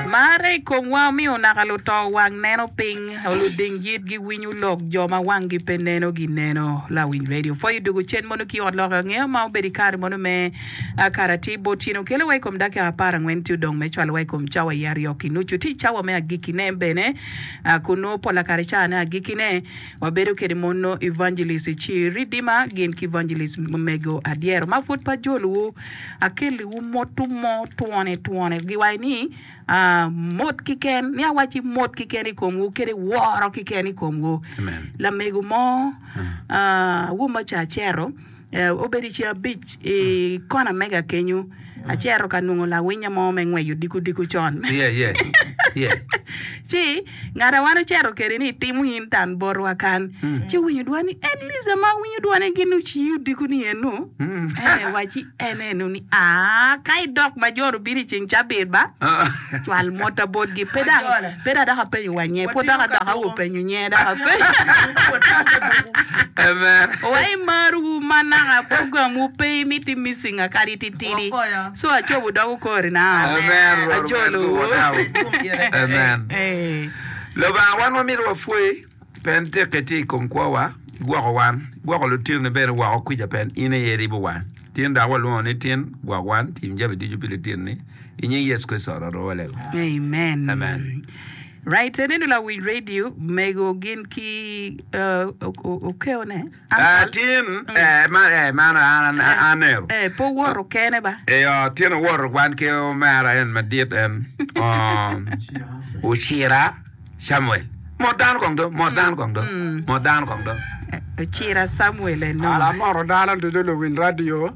Marre i komwa omiyo naka luto wang neno piny, luding yit giwinyo lok, jo ma wanggi pe neno gineno. Lawiny radio pwoyo i dog ocen mono ki i ot lok angeya ma obedo i kare mono me kare atir bot tyeno kelo wa i kom dakika apar angwen ci odong me cwalo wa i kom cawa aye aryo ki nucu. Tye cawa me agikki ne bene kun nongo pola kare caa ne agikki ne. Wabedo kede mono Evangelist Chi Ridima gin ki Evangelist Mego Adyero ma pud pa jolowu. Akelliwu motu mo twone twone giwaci ni ah, mot kiken, ni awaci mot kiken i komwu kede woro kiken i komwu. Amen. Lamego mo ah, Wuma Cacero Obedo i ceng abic i kona mega kenyu, acito ka nongo lawinya mo me ngweco dikudiko con. Ci ngat a wan ocito kwede ni timo in tan botwa kan, ci owinyo dwan ni, En Liza ma awinyo dwane gin ociyi odiko ni eno? Ee, wacci en eno ni, Aa, ka idok ma joni obino i ceng cabit ba. cwal mota botgi. Pe dang, pe da dok apenyo wa nye, pwod dok adoka wu penyo nye dok apenyo. Amen. Wa i mar wu ma naka program wu pe i miti missinga kadi titidi. So acobu dok wu kori nao. Amen. Rwot omed Ajolo wu. guwonau. Amen. Amen. Lubanga wan wamito wa pwoyi. Pe nitik itye i kom kwowa, igwoko wan, igwoko lutinoni bene woko kwica pien in aye iribo wan. Tin dok walwongo ni tin, gwok wan, tim jami ducu pi lutinoni, i nying Yecu Kricito wan oromo walego. Amen. Amen. Right, aneno lawiny radio mego gin ki uh, o- o- okeo ne. Tin owoto wan ki omera en madit, en ocira Camuel. Mot dano kong do, mot dano kong do, mot dano kong do. Ocira Camuel eno. Ala moto dano ducu luwiny radio.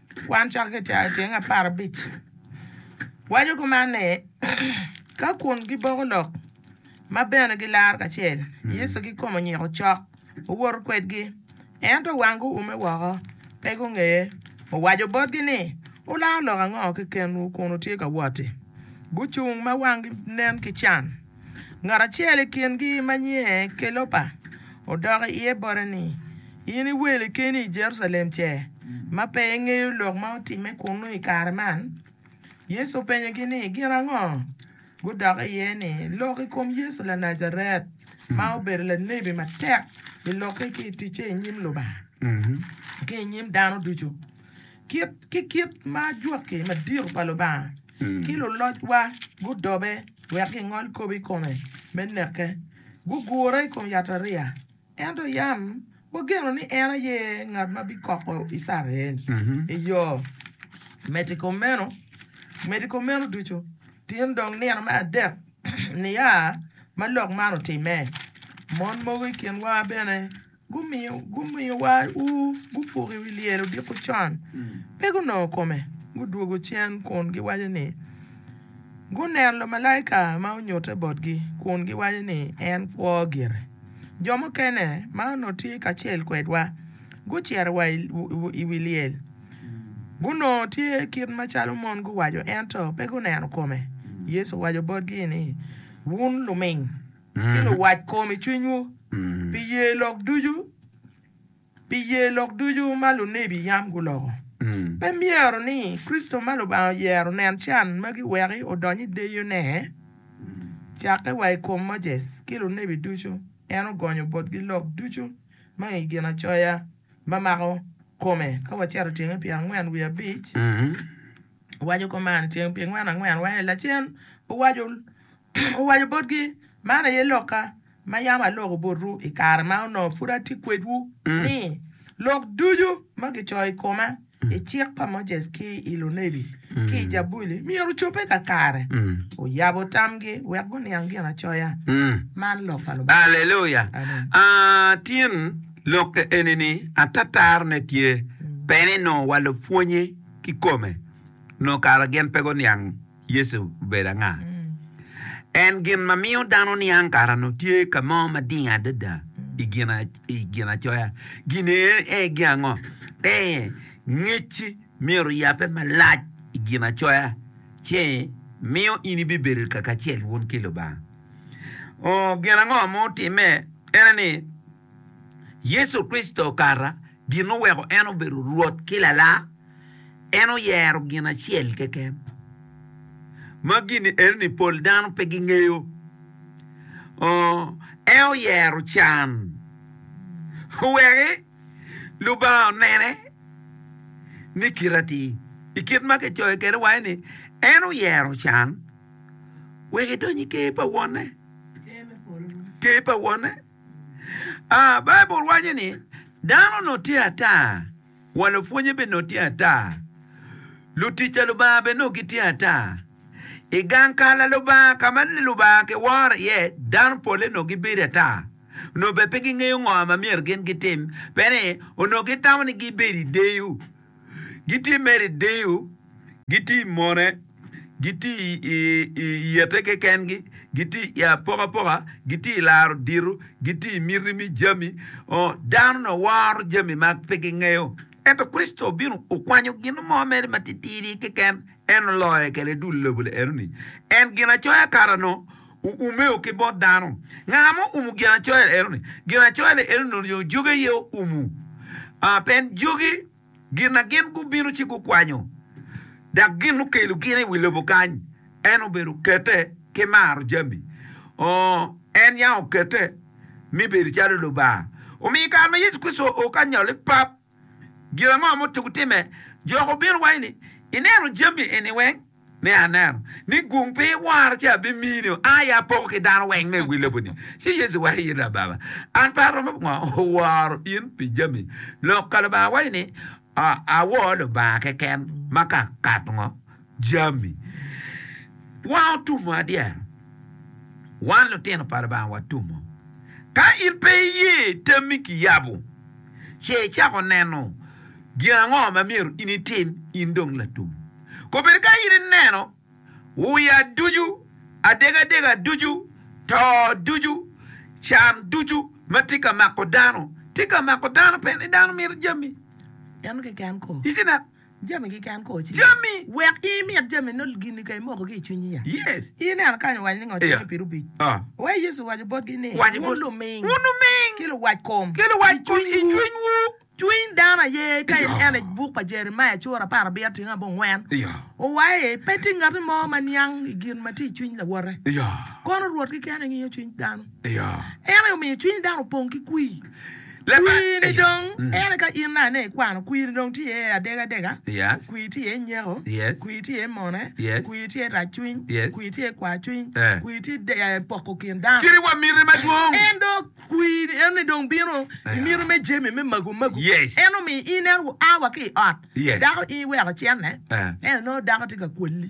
Kwan cok ki tyeng aparabic waco kuman ni, Ka kun giboko lok ma bene gilaro kacel, Yecu kikome onyiko cok, owoto kwedgi. Ento wang guume woko, pe gungeye. Owaco botgi ni, Wularo lok ango kekenwu kun wutye ka wot-ti? Gucung ma wanggi nen ki can. Ngat acel i kingi ma nyinge Kelopa odok i iye bote ni, In iweli keni i Jerucalem ce, ma pe ingeyo lok ma otimme kunnu i kare man? Yecu openyogi ni, Gin ango? Gudok iye ni, Lok i kom Yecu Lanajaret, ma obedo lanebi matek i lokke ki i ticce i nyim Lubanga ki i nyim dano ducu. Kit ki kit ma ajwaki madito pa Lubanga ki lulocwa gudobe wek gingol kop i kome me neke, gugure i kom yatariya. Ento yam wageno ni en aye ngat ma bikoko Icrael i yo meti kumeno, meti kumeno ducu tin dong nino me adek nia ma lok man otimme, mon mogo i kinwa bene, Gumiyowa ur gupuk i wi lyel odiko con, pe gunongo kome. Gudwogo cen kun giwaco ni guneno lumalaika ma onyutte botgi kun giwaco ni en kwo gire. Jo mukene ma onongo tye kacel kwedwa gucito wa i wi lyel. Gunongo tye kit macalo mon guwaco ento pe guneno kome. Yecu owaco botgi ni, Wun luming. ki luwac kom i cwinywu, pi ye lok ducu, pi ye lok ducu ma lunebi yam guloko. Pe myero ni Kricito ma Lubanga oyero nen can magi wek odony i deyone? Cakke wa i kom Moses ki lunebi ducu, en ogonyo botgi lok ducu ma i Ginacoya ma mako kome, ka wacito tyenge pyerangwen wiye abic. Owaco kuman, Tyeng pyengwen angwen wa i lacen, owaco botgi, Man aye lokka ma yam aloko botwu i kare ma onongo pud atye kwedwu, ni, Lok ducu ma kicoyo i koma i Cik pa Moses ki i lunebi ki i Jabuli myero ocobbe kakare. Oyabo tamgi wek guniang Ginacoya. Man lok pa Lubanga. Aleluya! Tin lokke eni-ni atatarone tye, pe ni nongo wa lupwonye. kikome, nongo kara gin pe guniang Yecu obedo anga. En gin ma miyo dano niang kara nongo tye ka mo mading adada i gin i ginacoya. Gin aye gin ango? Ee, ngecci myero oyabbe malac i ginacoya ci miyo in ibibedo kaka acel wun ki Lubanga. Oo, gin ango ma otimme? En aye ni, Yecu Kricito okato gin oweko en obedo Rwot ki Lalam. En oyero gin acel keken, ma gin-ni enoni pol dano pe gingeyo. En oyero can owek Lubanga onene ni kite atir. I kit ma kicoyo kwede waco ni en oyero can wek edony i Ker pa Wonne. A Baibul waco ni, Dano onongo tye ata, wa lupwonnye bene onongo tye ata, lutic pa Lubanga bene onongo gitye ata. I gang ka Lubanga ka ma Lubanga kiworo iye, dano polle onongo gibedo ata. Onongo bene pe gingeyo ngo ma myero gin gitim, pien ni onongo gitamo ni gibed i deyo. Gitye mere i deyo, gitye i mone, gitye i yete kekengi, gitye i apokapoka, gitye i laro dito, gitye i miti me jami. Oo, dano-ni oworo jami ma pe gingeyo. Ento Kricito obino, okwanyo gin mo mere matitidi keken, en oloye kede dul lobo-ni enoni. En Ginacoya kato-nu. Oumeo ki bot dano. Nga ma oumo Ginacoya eno-ni? Ginacoya-ni eno-ni onyo jogi aye oumo? Aa, pien jogi, gin na gin gubino ci gukwanyo, dok gin okelo gin i wi lobo kany, en obedo okete ki maro jami. Oo, en yam okete mi bedo calo Lubanga. Omiyo i kare ma Yecu Kricito oo ka nyol i pap, gin ango ma otuko timme? Jok obino wacci ni, Ineno jami eni weng? Ni, Aneno. Ni, Gung pe iwora ci abimini-o. A i apoko ki dano weng me i wi lobo-ni. Ci Yecu wacci ni, Lababa, an pe aromo pi ngo woro in pi jami lok ka Lubanga wacci ni, Awor Lubanga keken ma ka akato ngo? jami wa otumo adyera. Wan lutino pa Lubanga watumo. Ka in pe iye tammi kiyabo, ce icako neno gin ango ma myero in itim in dong latum. Kobedo ka in ineno uya ducu, adegadega ducu, to ducu, can ducu ma tye ka mako dano, tye ka mako dano pe ni dano mito jami. Dano keken ko. Icineno? Jami keken ko ci. Jami, wek i mit jami no gini ka imoko ki i cwinyi ya. Yes. I neno kany owaco ni ngo timmi piri obic? Ah. Wai Yecu owaco botgi ni, Waco bot, wun luming. Wun luming. Ki luwac kom. Ki luwac kom i cwiny wu. Cwiny dano aye ka in ene buk pa Jeremiah cura apar abiro tingo abongwen owae pe tye ngati mo ma niang i gin ma tye i cwiny lawote kono Rwot keken aye ngiyo cwiny dano. En aye omiyo cwiny dano opong ki kwir. Kwir ni dong ere ka in nane ikwano kwir ni dong tye iye adega adega, kwir tye iye nyeko, kwir tye iye mone, kwir tye iye rac cwiny, kwir tye iye kwar cwiny, kwir tye iye poko kin dano. En dong kwir ni en ni dong bino i mito me jami me magu magu. En omiyo in en oa wa ki i ot dako in iweko cenne, ento nongo dako tye ka kweli.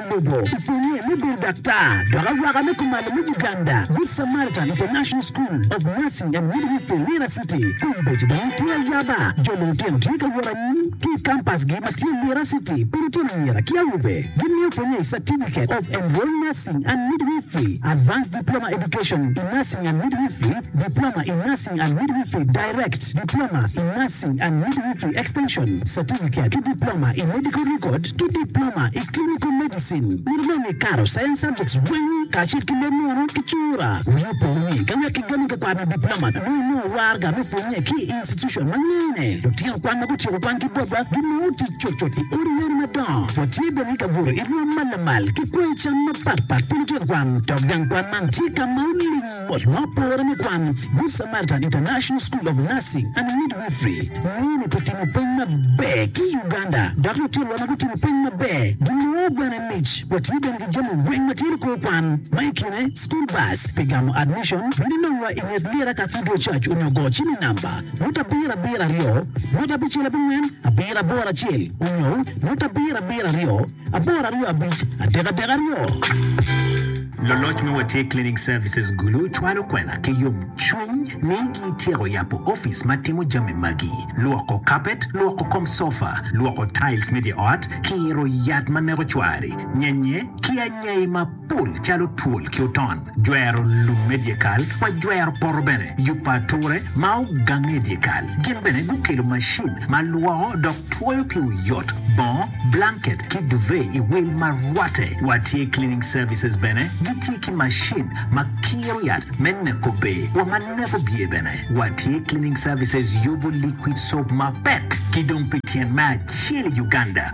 lobo i pwonye me bedo daktar dok awaka me kumalo me Uganda, Good Samaritan International School of Nursing and Midwifery, Lira City. Kombeddi dong tye ayaba, jo lutino tye ka wot anyim ki i kampasgi ma tye Lira City pa lutino anyira ki awobe. Gimiyo pwonye i Certificate of Enrolled Nursing and Midwifery, Advanced Diploma Education in Nursing and Midwifery, Diploma in Nursing and Midwifery, Direct, Diploma in Nursing and Midwifery Extension, Certificate, ki Diploma i Medical Record ki Diploma i Clinical Medicine. Mito bene ni ikato Science Subjects weng kacel ki leb munu ki cura. Wi opo ni ka wek kigami ka kwaro me Diploma nongo inongo warga me pwonye ki i institution ma ngene lutino kwan ma gutyeko kwan ki botwa ginongo tic cutcut i odi leno madongo. Watye bene ka buto i rwom ma lamal ki kwoyo cam mapatpat pi lutino kwan dok gang kwan man tye ka ma oling Ot ma opore me kwan, Good Samaritan International School of Nursing and Midwifery, nongo lupetino peny maber ki i Uganda, dok lutinwa ma gutimo peny maber ginongo bene mic. Watye bene ki jami weng ma tye lukor kwan, ma i kine school bus pi gamo admission, bino inongwa i nget Lira Cathedral Church onyo go cimi namba, nota abiro abiro aryo, nota abicel abongwen abiro aboro acel, onyo nota abiro abiro aryo. Apar aryo abic adek adek aryo. Loloc me Watye Cleaning Services Gulu cwalo kwena ki yomcwiny ni gityeko yabo opic ma timo jami magi, lwoko kapet, lwoko kom sofa, lwoko tiles me dye ot, kiro yat ma neko cwari, nyenye, ki anyai ma. Pul calo twol ki oton, jwero lum me dyekal, wa jwero poto bene, yubo ature ma ogange i dyekal. Gin bene gukelo macin ma lwoko dok twoyo ki oyot bongo, blanket ki duvet i wil ma rwatte. Wa tye cleaning services bene gitye ki macin ma kiro yat me neko ber wa ma neko byer bene. Wa tye cleaning services yubo liquid soap mapek ki dong pi tyen me acel i Uganda.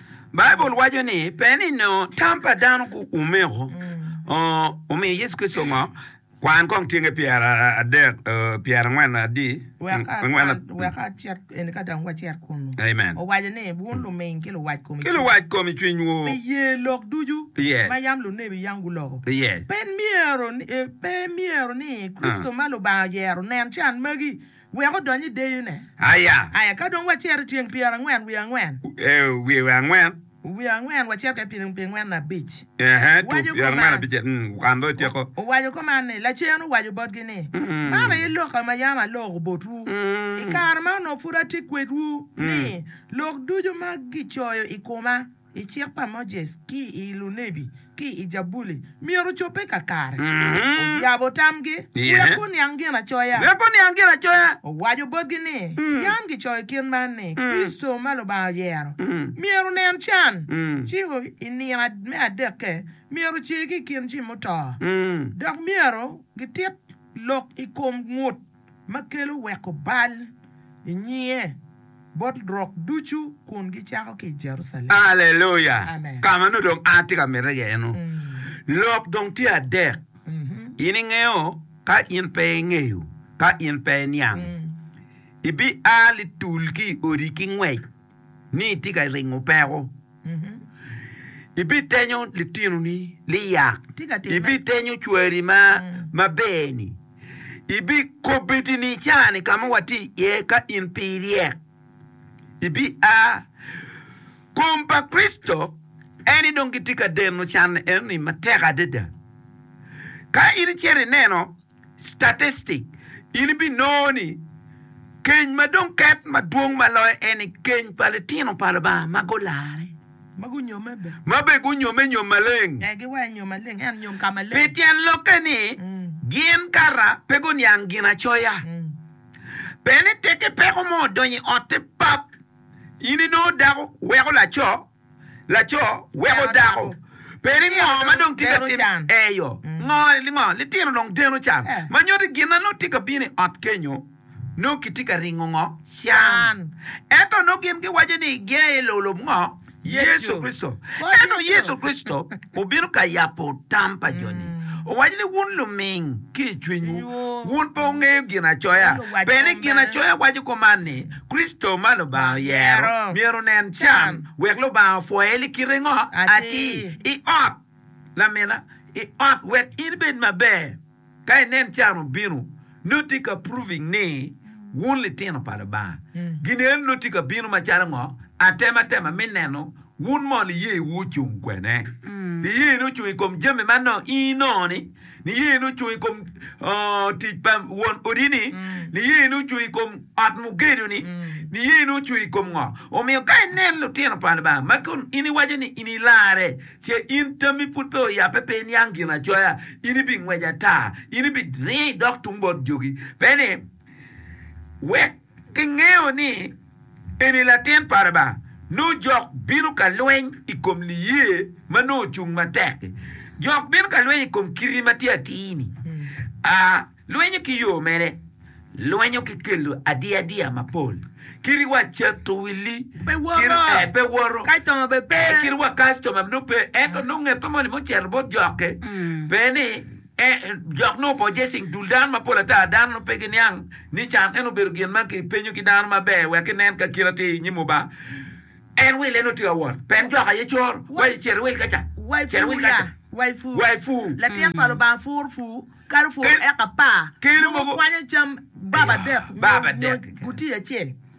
Baibul waco ni pe ni nongo tam pa dano guumeko omiyo Yecu Kricito ngo. Kwan kong tyenge pyerangwen adi. Wek acit eni ka dong wacit kunu. Amen. Owaco ni, Wun luming ki luwac kom i cwinywu. Ki luwac kom i cwinywu. Pi ye lok ducu ma yam lunebi yam guloko. Pe myero ni Kricito ma Lubanga oyero onen can magi. wek odony i deyone. Aya. Aya, Ka dong wacito i tyeng pyera angwen wiye angwen. Wiye angwen. Wiye angwen, wacito ka i pyera angwen na abic. Ee, tur pyera angwen abicel. Wukan dong ityeko. Owaco kuman ni, Lacen owaco botgi ni, Man aye lokka ma yam aloko botwu i kare ma onongo pud atye kwedwu, ni, Lok ducu ma gicoyo i koma, i Cik pa Moses ki i lunebi ki i Jabuli myero ocobbe kakare. Oyabo tamgi, wek guniang Ginacoya. Owaco botgi ni, Yam gicoyo i kit man ni, Kricito ma Lubanga oyero myero onen can, ci i nino me adekke myero ocer ki i kin jo muto, dok myero gitit lok i kom ngut. ma kelo weko bal i nyinge bot lurok ducu kun gicako ki i Jerucalem. Aleluya! Amen. Ka ma nongo dong atye ka mite iye eno. Lok dong tye adek. In ingeyo? Ka in pe ingeyo, ka in pe iniang, ibiaa litul ki i odi ki ngwec. ni itye ka ringo peko, ibitenyo litinoni liyak, ibitenyo cwari ma maber-ni, ibikobedi ni caa-ni ka ma watye iye ka in pe iryek, ibia. Kom pa Kricito en-ni dong gitye ka deno can enoni matek adada. Ka in icito ineno Statistic, In ibinongo ni keny ma dong ket madwong ma loyo en ni keny pa litino pa Lubanga ma gularre, ma bene gunyomme nyom maleng. Pi tyen lokke ni gin kara pe guniang Ginacoya, pe ni tek ki peko mo odonyo i otte pap, in inongo dako weko laco. Laco weko dako. Pe ni ngo ma dong tye ka tim eyo ngo ngo litino dong deno can ma nyoti gin na nongo tye ka bino i ot kenyo nongo kitye ka ringo ngo can ento nongo gin giwaco ni gia i lulub ngo Yecu Kricito ento Yecu Kricito obino ka yabo tam pa jo ni owaco ni wun luming ki i cwinywu wun pe wungeyo ginacoya pe ni ginacoya waco kuman ni Kricito ma Lubanga oyero myero onen can wek Lubanga opwoye ni kite ngo? Atir, i ot lamina, i ot wek in ibed maber ka inen can obino, nongo tye ka proving ni wun litino pa Lubanga. Gin eno nongo tye ka bino macalo ngo? Atematema me neno wun mono iyewu ocung kwene. Iyeni ocung i kom jami ma nongo inongo ni Niyeni ocung i kom tic pa won odi-ni? Niyeni ocung i kom ot mugedo-ni? Niyeni ocung i kom ngo? Omiyo ka inen lutino pa Lubanga ma kun in iwaco ni in ilarre, ce in tammi pud pe oyabbe, pe iniang Ginacoya, in ibingwec ata, in ibiringo idok tung bot jogi. Pe ni, Wek Kingeyo ni eni Latin pa Lubanga, nongo jok bino ka lweny i kom liye ma nongo ocung matek-ki. Jok bino ka lweny i kom kiti ma tye atir-ni. A Lwenyo ki yo mere? Lwenyo ki kelo adiadiya mapol. Kitiwa cito wi li, Pe woto. kit- eh, pe woto. Kactoma bene pe. Eh, kitiwa kactoma nongo pe, ento nongo nge pe moni mucito bot jokke. Pe ni. Dok nongo pojje cing dul dano mapol ata, dano nongo pe giniang ni can en obedo gin ma kipenyo ki dano maber wek kinen ka kite atir i nyim Lubanga. En wille nongo tye ka wot, pen jok aye cor, wa i cere wil kaca, cere wil kaca. Wai fu, latin pa Lubanga fur fu, kalo fur eka pa, mogo kwanyo cam bab adek nyo gutiya acel.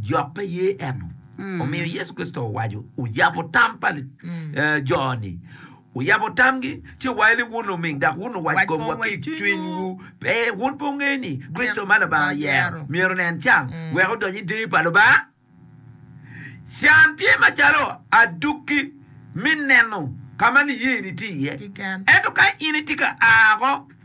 Jok pe ye eno. Omiyo Yecu Kricito owaco, oyabo tam pa jo-ni, oyabo tamgi, ci owaco ni, Wun oming, dok wun owac komwa ki i cwinywu. Pe, wun pe wungeyo ni Kricito ma Lubanga oyero myero onen can wek odony i deyo pa Lubanga? Can tye macalo adukki me neno ka ma niyeni tye iye. Ento ka in itye ka a woko,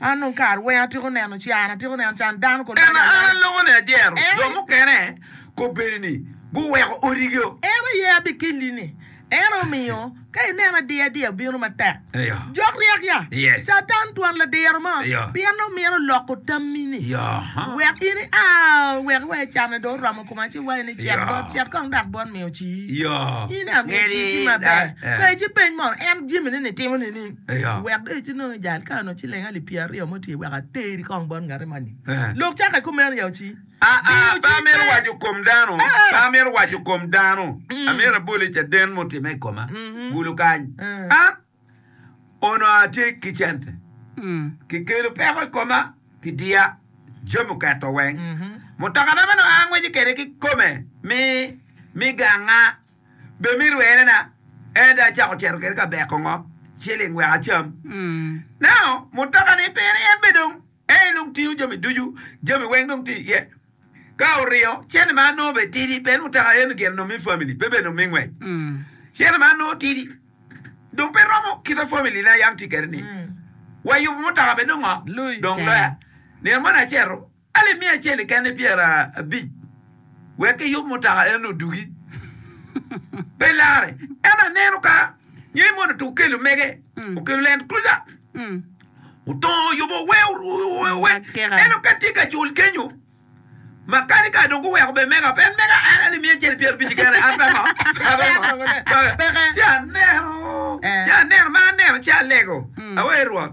An onongo kare weng atyeko neno can, atyeko neno can dano kor Ento an alongo ni adyero jo mukene kobedi ni guweko odigi o. En aye abikeli ni. En omiyo ka ineno adiya adiya bino matek, jok ryek ya. Catan twon ladiro mo pien nongo mito loko tammi ni wek in ia wek iwe canne dong oromo koma ci iwaci ni cet bot, cet kong dok bot miyo ci. In amiyo ci ci maber. Peci peny mono en jami ni ni timo nining? Wek dong icit nongo ijal kare onongo ciling alip pyeraryo mo tye wek ateri kong bot ngati moni. Lok cakke kumeno ya oci. Aa, pe amito waco kom dano, pe amito waco kom dano, amito abol i caden mutimme i koma kulu kany. An onongo atye ki cente, kikelo peko i koma, kidiya, jami oketo weng. Mutokana ma nongo angweco kwede kikome mi, mi ganga. Be mi rwerena ento acako cito kede ka beko ngo ciling wek acam. Nao mutoka ni pire en be dong en dong tingo jami ducu jami weng dong tye iye. Ka oringo cente ma anongo be tidi pien mutoka eni gin onongo mi family pe bene mi ngwec. Cente ma anongo tidi dong pe romo kita family na yam tye kede ni wayubo mutoka be nongo dong loya. Nino moni aceto. Alip miya acel i kene pyerabic, wek kiyub mutoka eno odugi. Pe larre, ento aneno ka nyo i mono tuk kelo mege okelo Land Cruiser otongo oyubo owe owe eno ka tye ka cul kenyo makanika dong guweko be mega pe en mega en alip miya acel pyerabic i kene an peko peko ci aneno ci aneno ma aneno ci alego awe Rwot.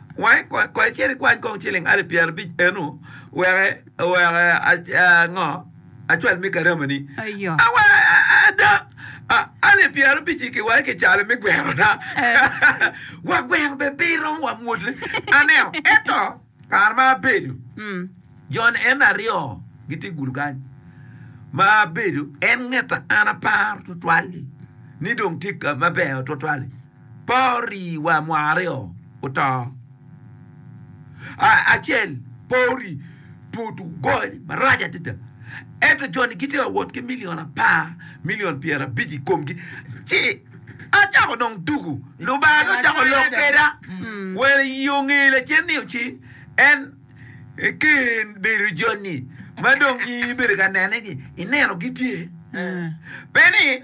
Wa kong icit ikwany kong ciling alip pyerabic eno weke weke ango acwal me karamani awa ada alip pyerabic iki wa iki calo me gwero na wa gwero be pe iromo wa mwot ne aneo eto kare ma abedo jon en aryo giti gudo kany ma abedo en ngeta an aparo tutwal ni dong ti maber tutwal Por ri wa mo aryo oto. Acel por ri tut ogoyo-ni marac adada. Ento jo-ni gitye ka wot ki milion apar, milion pyerabic i komgi. Ci acako dong tuku. Lubanga-ni ocako lok kweda. Wel i onge lacen ni ci en eken bedo jo-ni ma dong in ibedo ka nene ni ineno gitye. Pe ni.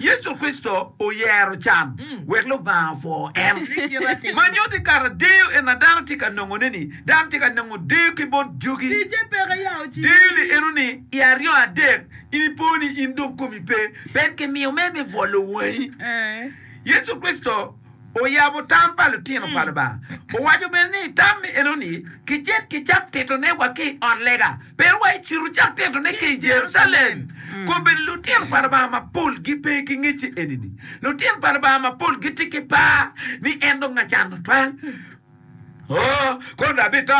Yecu Kricito oyero can wek Lubanga opwo en. Ma nyuto i kato deyo en ma dano tye ka nongoneni, dano tye ka nongo deyo ki bot jogi. Deyo ni enoni i aryo adek in ipo ni in dong komi pe, bed ki miyo mere me bwolo wangi. Yecu Kricito. oyabo tam pa litino pa Lubanga. Owaco bene ni, Tam me eno-ni kicit ki cak titone wa ki i ot lega, pero wa ecito cak titone ki i Jerucalem. Kobbe ni, Litino pa Lubanga mapol gipe ki ngecce eni-ni. Litino pa Lubanga mapol gitye ki par ni en dong acan tutwal. Oh, kodi abito?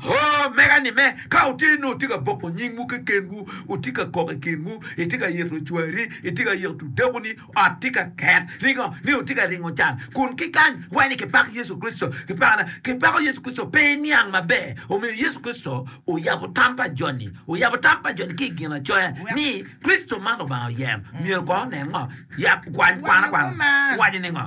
Oh, mega-ni me. Ka wutye nongo wutye ka boko nyingwu kekenwu, wutye ka kok i kinwu, itye ka yito cwari, itye ka yito dakoni, ot tye ka ket, ringo ni wutye ka ringo can, kun ki kany weny kipak Yecu Kricito. Kipako ne? Kipako Yecu Kricito. Pe iniang maber? Omiyo Yecu Kricito oyabo tam pa joni, oyabo tam pa joni ki i Ginacoya ni Kricito man Lubanga oyero. Myero kono onen ngo? Yap, kwany, kwan akwana. Owaco ni ngo?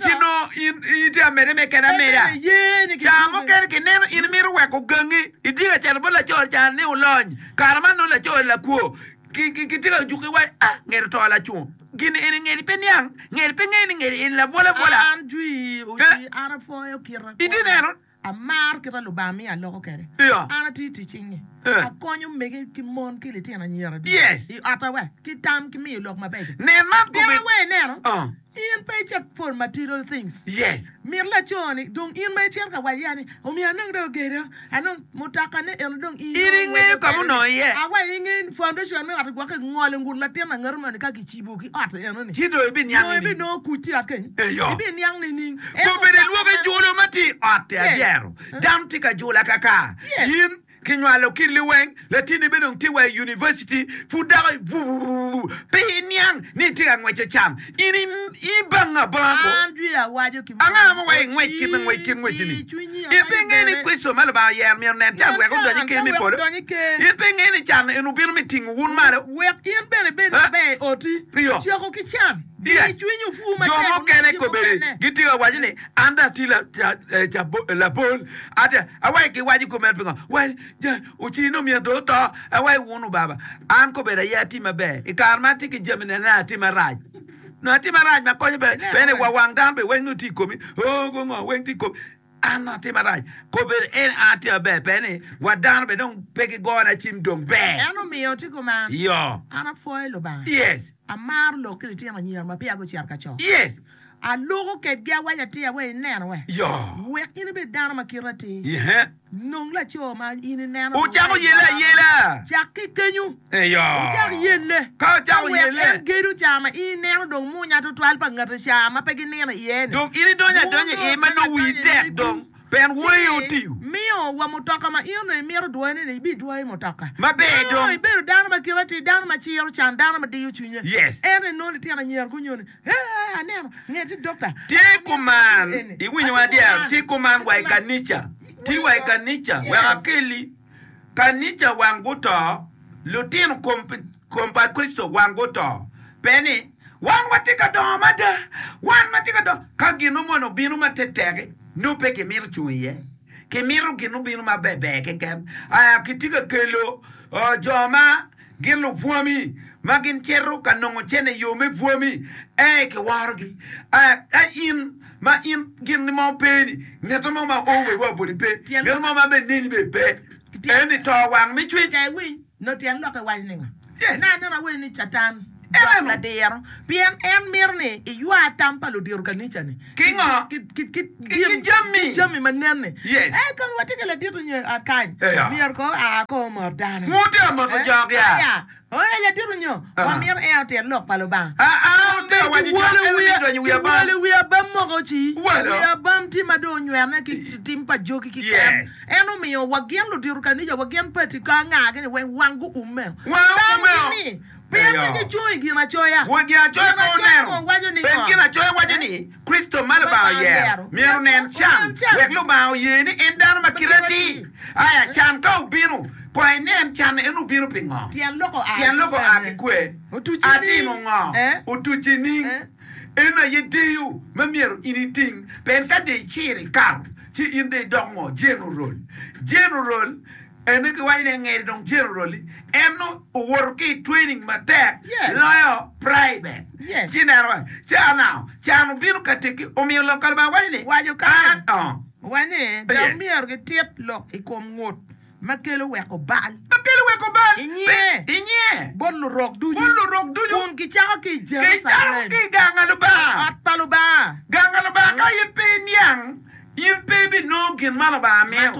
ci nongo in itye amede me keda ameda. Ca mukene kineno in imito weko gangi idye kacel bot laco ni cani ni olony, kare man nongo laco ni lakwo, kitye ka juki iwaci, Ah, ngeri oto lacung. Gin eni ngeri pe niang, ngeri pe ngeyo ni ngeri eni labwolabwola. Itye neno? Amaro kit ma Lubanga miyo aloko kwede. An atiyo i tic cingnge. Akonyo omege ki mon ki litino anyira ducu i otta wa ki tam ki miyo lok mabeco. Tikawa wa ineno ni in pe icit for material things. Mit laco ni dong in ma icito ka wacce ni omiyo anongo dong ogedo anongo mutoka ne eno dong in inongo iweko kwede ni awa inge foundation me ot-ti gwok ingolo ngut latin angati moni ka ki. cibo ki ot enoni, ci dong ibinongo kuc i ot kenyo. Eyo, kobene lwoki julo ma tye i ot tye adyero. Dano tye ka julo akaka. In kinywalo ki liweng, latinni bene dong tye wa i univaciti, pud dako ibubububu, pe iniang ni itye ka ngweco cam. In ibanga banga kwo. Ango ma weko ingwec kit ma ngwec kit ngwecci-ni? In pe ingeyo ni Kricito ma Lubanga oyero myero nen can wek odony i Ker me polo? In pe ingeyo ni can eno obino me tingo wun malo? Iyo, jo mukene kobedi gitye ka waco ni, An dong atye labol, awaco giwaco kop meno pingo? Waco, Ocir nongo myero dong oto. Awaco, Wun obaba, an kobedi aye atye maber, i kare ma atye ki jami-ni aneno atye marac. nyo atim marac ma konyo bene wa wang dano pi weng nongo tye i komi, oo gu ngo weng tye i komi an nongo atim marac kobbe ni en an atye maber pe ni wa dano bene dong pe gigona cim dong ber. En omiyo tye koma. Iyo. An apwoyo Lubanga. Yes. Amaro lok ki litino anyira ma peya gucito ka co. Yes. Aluko kedgi awaco atir awaco ineno we. Yoo. Wek in ibed dano ma kite atir. Yee. Nong laco ma in ineno. Wucako yelle ayela. Cak ki kenyu. Eyo. Wucak yelle. Ka wucako yelle. Ka wek en gedo ca ma in ineno dong munya tutwal pa ngati ca ma pe ginino iye-ni. Dong in idonyo adonya i iye ma nongo wii tek dong. Pien woi aye otiyo. Ci miyo wa mutoka ma in onongo imito dwoyone ni, ibidwoyo mutoka. Maber dong. Nongo ibedo dano ma kite atir, dano ma ciro can, dano ma diyo cwinye. Yes. Ento inongo litino anyira-gu nyo ni. Ti kuman, iwinyo wa dyang, ti kuman wa i kanica, ti wa i kanica wek akelli. Kanica wang guto, lutino kom pa Kricito wang guto, pe ni, Wan watye ka dongo mada, wan watye ka dongo. Ka gin nongo mono obino ma teteki, nongo pe kimito cung iye. Kimito gin obino ma berber keken. Aa, kitye ka kelo jo ma. Gin lupwami ma gin cito ka nongo cene yo me pwami ee ki worogi aa ka in ma in gin ni mo pe ni ngete mo ma oo wa boti pe ngete mo ma be neni be pe eni to wang me cwiny. Ka iwinyo tyen lok iwaco ningo? Yes. Na aneno awaco ni catan. Dok ladiro, pien en mito ni iywa tam pa ludiro kanica-ni ki ngo? Ki jami ma nenne. Ee, kong wati ki ladit onyo i ot kany, myero kong oa ko omot dano. Aya, ee, ladit onyo, wamito en otit Lok pa Lubanga. Omege, kiwolo wiya, kiwolo wiya bam moko ci, wiya bam ci ma dong onywene ki tim pa jogi kiken. En omiyo wa gin ludiro kanica wa gin pati ka angagi-ni weng wang guummeo. Tamgi ni. Pien pe gicung i Ginacoya. Won Ginacoya pe oneno, pien Ginacoya waco ni Kricito ma Lubanga oyero myero onen can, wek Lubanga oye ni en dano ma kite atir. Aya can ka obino, kong inen can en obino pi ngo. Tyen loko a ki kwe, atimo ngo? Otuci niing. En aye deyo ma myero in iting. Pien ka dong iciro ikato, ci in dong idoko ngo? Jenerol. Jenerol. En ni giwaco ni angeri dong cen oroli en nongo owoto ki training matek loyo private ci ineno wa can now can obino kategi omiyo lok kalubanga waco ni waco karen wa ni dong myero gi tit lok i kom ngut ma kelo weko bal ma kelo weko bal inge bot lurok ducu kun gi cako ki i Jerucalem ot pa lubanga ka in pe iniang In pe ibinongo gin ma Lubanga mito.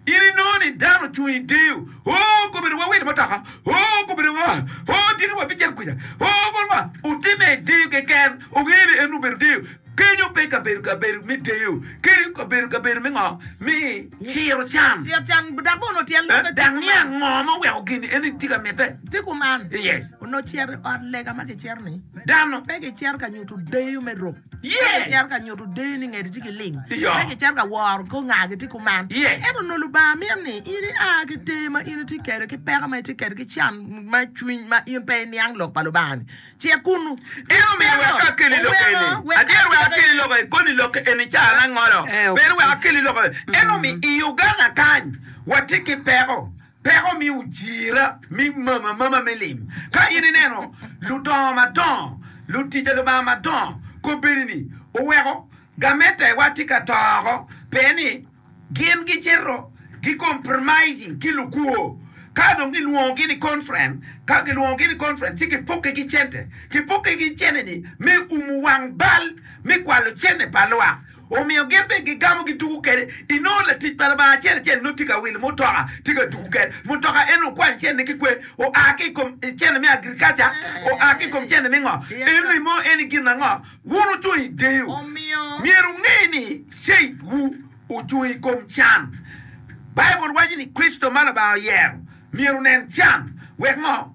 In inongo ni dano ocung i deyo, Oo, gubedo wa wilo mutoka, Oo, gubedo wa, Oo, dyegi wa bicito kuca, Oo, bot wa. Otimme i deyo keken. Ongeyo ni en obedo deyo. Kenyo pe kabedo kabedo me deyo. Kenyo kabedo kabedo me ngo? Me ciro can. Dok niang ngo ma oweko gin en tye ka mitte. Yes. Dano. Ka gicito ka nyuto deyo ni ngedigi tye ki lim, pe gicito ka woro kor ngagi tye kuman. Ento onongo Lubanga mito ni in ia ki deyo ma in itye kwede, ki peko ma itye kwede, ki can me cwiny ma in pe iniang lok pa Lubanga-ni. Cit kunnu. In omiyo wek akeli lok eni. Adyeri wek akeli lok eni koni lok eni caa me angolo. Peni wek akeli lok eni. Ento i Uganda kany watye ki peko. Peko miyo ojira me mama amama me lim. Ka in ineno ludongo madongo, lutic pa Lubanga madongo kobeni ni oweko gamettewa tye ka to oko pien ni gin gicito gi compromising ki lukwo, ka dong gilwongogi ni conference, ka gilwongogi ni conference ci gipukke ki cente, gipukke ki cente ni me umu wang bal me kwalo cente pa lwak. Omiyo gin bene gigamo giduku kwede. Inongo latic pa Lubanga acel acel nongo tye ka wilo mutoka, tye ka duku kwede. Mutoka eno okwanyo cene ki kwer? Oa ki i kom cene me agriculture? Oa ki i kom cene me ngo? Eni mo en i gin ango? Wun wucung i deyo, myero wunge ni faithwu ocung i kom can. Baibul waco ni Kricito ma Lubanga oyero myero onen can. Wek ngo?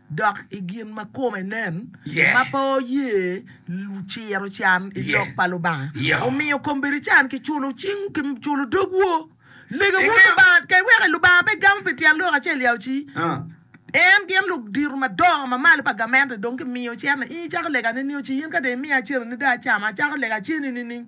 dok i gin ma kome nen ma pe oye ciro can i lok pa Lubanga. Wumiyo kombeddi can ki culo cingwu ki culo dogwu. Legeuru Lubanga kek wek Lubanga pe gamo pi tyen lok acel ya oci. En gin lok diro madongo ma malo pa gamente dong kimiyo cente. In icako lega nining oci? In ka dong imiya cente ni dong acama, acako lega ceni nining?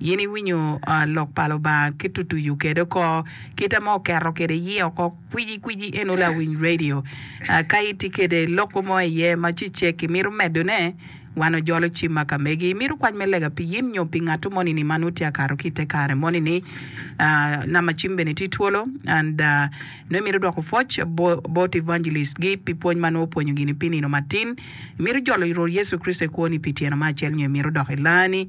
In iwinyo lok pa Lubanga ki tutuyu kede oko, kite ma oketo kede iye oko kwici kwici eno lawiny radio. Ka iti kede loko mo iye ma cecek imito medo ne, wan ojolo cim ma ka megi. Imito kwac me lega pi yin nyo pi ngatu moni ni ma nut tye akato ki ite kare moni ni. Namba cim bene tye twolo and nongo imito dwoko pwoc bot evangelist gi pi pwony ma nongo opwonyo gini pi nino matin. Imito jolo Rwot Yecu Kricito i kwoni pi tyeno ma acel nyo imito dok ilani.